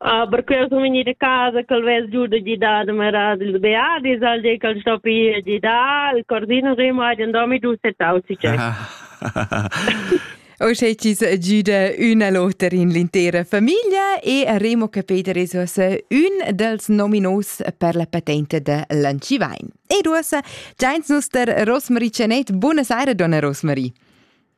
Uh, perché eu sun vegnida a casa ch'el vess giù da gidar da merar ils beadis, al di ch'el sto pi a gidar, il cordino remo ha den domi giù settau si c'è. Uschè chi's giüda ün a l'oter in l'intera famiglia e remo che Peter es uossa ün dels nominos per la patente da Lancivain. Ed uossa giains nus der Rosmarie Cianet. Buona saira, donna Rosmarie.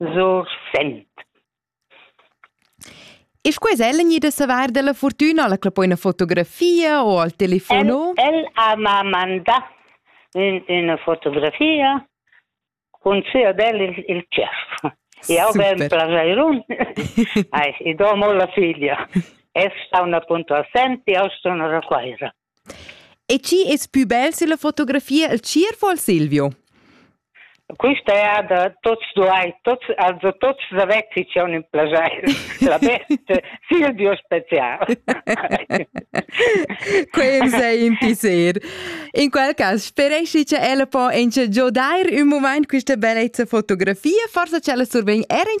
Sursent. E scuas ella gnida savar dalla fortüna alla cla poi una fotografia o al telefon o? El, el ha ma mandà ün, üna fotografia cun sia del il, il cerf. Io ben plageirun. Ai, i domo la figlia. Es sta una punto assenti, io sto una raquaira. E chi es pü bel silla fotografia il tschierv o il Silvio? Quista è da tots duai, tots, also tots savezzi c'è un plagier. La best Silvio special. Quel sei in pisser. In quel cas speresci che ella po enche giodair un moment questa bellezza fotografia, forse c'ella survegn er in